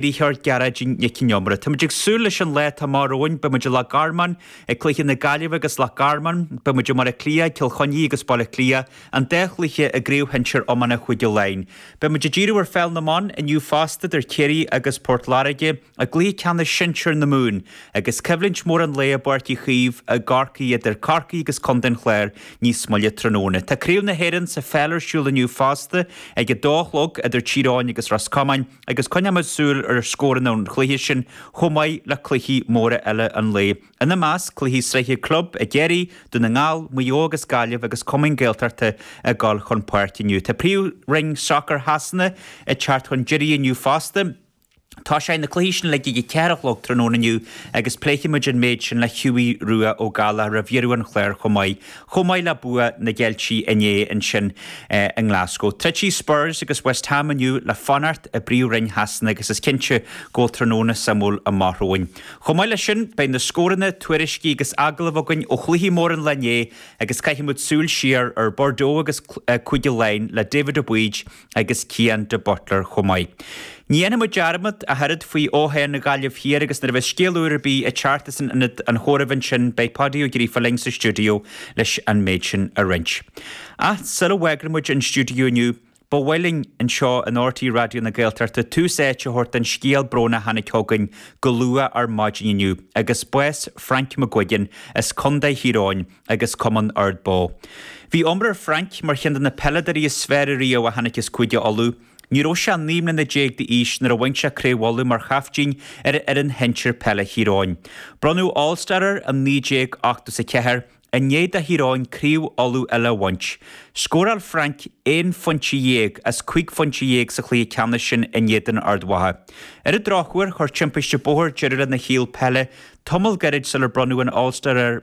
Rícheart, Gearóidín Nic an Iomaire. Táimid ag súil leis an lá atá amach romhainn. Beidh muid i Loch Garmáin ag cluiche na Gaillimhe agus Loch Garmáin. Beidh muid i mBaile Átha Cliath ag Cill Chainnigh agus Baile Átha Cliath, an dá chluiche i gCraobh Shinsir Iomána Chúige Laighin. Beidh muid ag díriú ar Pheil na mBan inniu fosta idir Ciarraí agus Port Láirge i gcluiche ceannais sinsir na Mumhan agus coimhlint mhór an lae i bPáirc Uí Chaoimh i gCorcaigh idir Corcaigh agus Contae an Chláir níos moille tráthnóna. Tá Craobh na hÉireann sa pheil ar siúl inniu fosta ag a dó a chlog idir Tír Eoghain agus Ros Comáin. agus coinneoimid súil ar scóranna an chluiche sin chomh maith le cluichí móra eile an lae, ina measc, cluichí sraithe club i gCiarraí, Dún na nGall, Maigh Eo agus Gaillimh agus cumainn Gaeltachta ag dul chun páirce inniu. Tá príomhroinn sacair Shasana ag teacht chun deiridh inniu fosta. Tosóidh na cluichí sin uilig ag a ceathair a chlog tráthnóna inniu agus pléifimid an méid sin le Hughie Rua Ó Gallchóir roimh dheireadh an chláir chomh maith. Chomh maith le bua na gCeiltigh inné ansin i nGlasgow, troidfidh Spurs agus West Ham inniu le fanacht i bPríomhroinn Shasana agus is cinnte go bhfuil tráthnóna suimiúil amach romhainn. Chomh maith leis sin, beidh na scóranna, tuairiscí agus agallaimh againn ó chluichí móra an lae inné agus caithfimid súil siar ar Bordeaux agus Cúige Laighean le David Aboud, agus Cian de Buitléir chomh maith. Ní dhéanfaimid dearmad, ach oiread, faoi fhothoghchán na Gaillimhe Thiar agus nuair a bheas scéal úr ar bith ag teacht as an Ionad an Chomhairimh ansin beidh Páidí Ó Gríofa linn sa stiúideo leis an méid sin a roinnt. Ach sula bhfágfaimid an stiúideo inniu ba mhaith linn anseo in RTÉ Raidió na Gaeltachta tús áite a thabhairt don scéal bróin a tháinig chugainn go luath ar maidin inniu agus bás Frank McGuigan as Co. Thír Eoghain agus Cumann Ard Bó. Bhí iomrá Frank mar cheann de na peileadoirí is fearr riamh a tháinig as Cúige Uladh. Ní raibh sé 19 mbliana d'aois nuair a bhain sé Craobh Uladh mar chaiftín ar fhoireann shinsir peile Thír Eoghain. Bronnadh All Star air i 1984, i ndiaidh do Thír Eoghain Craobh Uladh eile a bhaint. Scóráil Frank aon phointe dhéag as cúig phointe dhéag sa chluiche ceannais sin in éadan Ard Mhacha. Ar an drochuair, chuir timpiste bóthair deireadh lena shaol peile tamall gairid sular bronnadh an All Star air.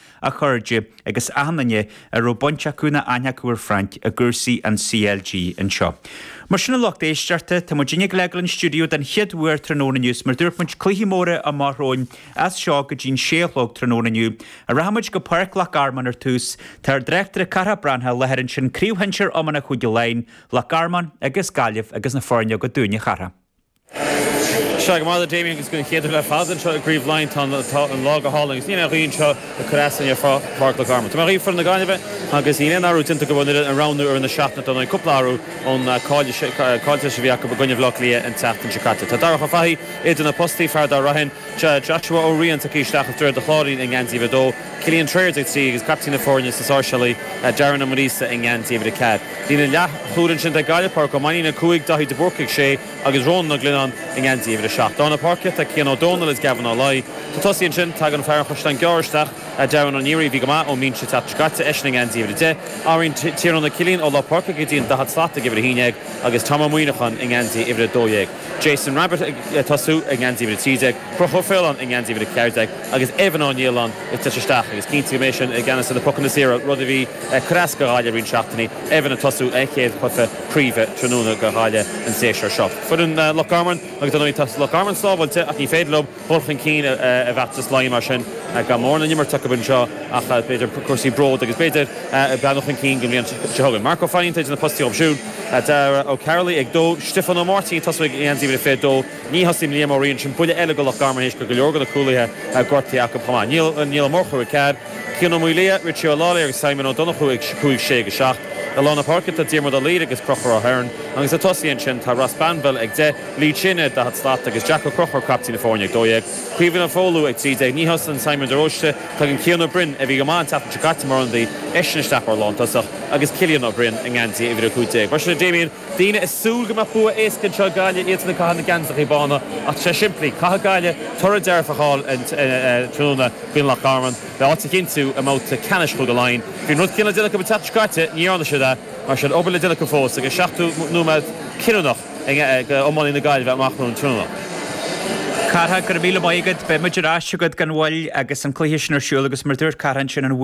a chairde, agus achan duine a raibh baint acu nó aithne acu ar Frank i gcúrsaí an CLG anseo. Mar sin a lucht éisteachta, tá muidinne ag gabháil a fhágáil an stiúideo den chéad uair tráthnóna inniu is mar a dúirt muid cluichí móra amach romhainn as seo go dtí'n sé a chlog tráthnóna inniu ach rachaidh muid go Páirc Loch Garman ar tús tá ár dtráchtaire Cárthach Breathnach i láthair ansin craobh shinsir iomána Chúige Laighin, Loch Garman agus Gaillimh agus na foirne agat dúinne, a Chárthaigh. Sea, go raibh maith agat Damien agus don chéad uair le fada anseo i gCraobh Laighean. Tá an lá go hálainn agus níl aon ghaoth anseo ag cur asainn ar Pháirc Loch Garman. Tabharfaidh mé daoibh foireann na Gaillimhe agus níl aon athrú déanta don fhoireann a roghnaíodh i rith na seachtaine, déanadh cúpla athrú ón gcaillteanas a bhí acu i gcoinne Bhleá Cliath an tseachtain seo caite. Tá Darach Ó Fathaigh idir na postaí, fear Ard Raithin, Joshua Ó Riain tagtha isteach as Droichead an Chláirín i ngeansaí uimhir a dó. Cillian Trayers ag 3, agus captaen na foirne as na Sáirséalaigh, Darren Ó Muirgheasa, i ngeansaí uimhir a 4. Líne leathchúil ansin ag Gaillimh, Pádraic Ó Mainnín ag 5, Daithí de Búrca ag 6, agus Rónán Ó Glionnáin i ngeansaí uimhir a 7. Lár na páirce tá Cian Daniels agus Gavin Ó Laoi. Sna tosaithe ansin tagann fear an Chaisleáin Ghearr isteach, Darragh Ó Neary, a bhí go maith ón mbinse an tseachtain seo caite, eisean i ngeansaí uimhir a 10. Athraíonn Tiarnán Ó Cillín ó lár páirce go dtí an daichead slat ag uimhir 11 agus Tom Ó Muineacháin i ngeansaí uimhir a 12. Jason Rabitte ag tosú i ngeansaí uimhir a 13. Crochúr Ó Faoláin i ngeansaí uimhir a 14 agus Evan Ó Nialláin ag tíocht isteach agus cinnte go mbeidh seisean i gceannas ar na pocanna saora, rud a bhí ag cur as do Ghaillimh roinnt seachtainí, Evan ag tosú a chéad chluiche craoibhe tráthnóna do Ghaillimh an séasúr seo. Foireann Loch Garman agus dar ndóigh tá Loch Garman sábháilte ach ní féidir leo dhul chun cinn i bhfeachtas Laighean mar sin gan mórán le n-imirt acu anseo ach b'fhéidir cúrsaí bróid agus b'fhéidir breathnú chun cinn don bhliain seo chugainn. Marc Ó Fainín atá idir na postaí dhóibh siúd. Dara Ó Carlaigh ag dó, Stiofán Ó Máirtín ag tosú i ngeansaí uimhir a 22. Ní thosaíonn Liam Ó Riain, sin buille eile do Loch Garman théis go bhfuil go leor de na cúlaithe gortaithe acu chomh maith. Niall Ó Murchú ag 4, Cian Ó Maolmhuaidh, Richie Ó Leathlobhair agus Simon Ó Donnchú ag 5, 6 agus 7. I lár na páirce tá Diarmuid Ó Laoire agus Crochúr Ó Hearn agus sna tosaithe ansin tá Ross Banville ag 10, Lee Chin ar an 40 slat, agus Jack Ó Crochúir, caiptín na foirne, ag 12. Caoimhín Ó Foghlú ag 13. Ní thosaíonn Simon de Róiste, tagann Cian Ó Broin, a bhí go maith an tseachtain seo caite mar ionadaí, eisean isteach mar lántosach agus Cillian Ó Broin i ngeansaí uimhir a 15. Mar sin a Damien. daoine ag súil go mbeadh bua éasca anseo ag Gaillimh, iadsan ag caitheamh na geansachaí bána. Ach tá sé simplí. Caithfidh Gaillimh toradh dearfach a fháil an tráthnóna in aghaidh Loch Garman le háit a chinntiú i mbabhta ceannais Chúige Laighean. Bhí an rud céanna le déanamh acu an tseachtain seo caite, ní dhearna siad é. Mar sin, obair le déanamh acu fós agus seachtó nóiméad cinniúnach ag iománaí na Gaillmhe amach romhainn tráthnóna. A Chárthaigh, go raibh míle maith agat. Beimid ar ais chugat gan mhoill agus an cluiche sin ar siúl agus mar a dúirt Cárthach ansin, an.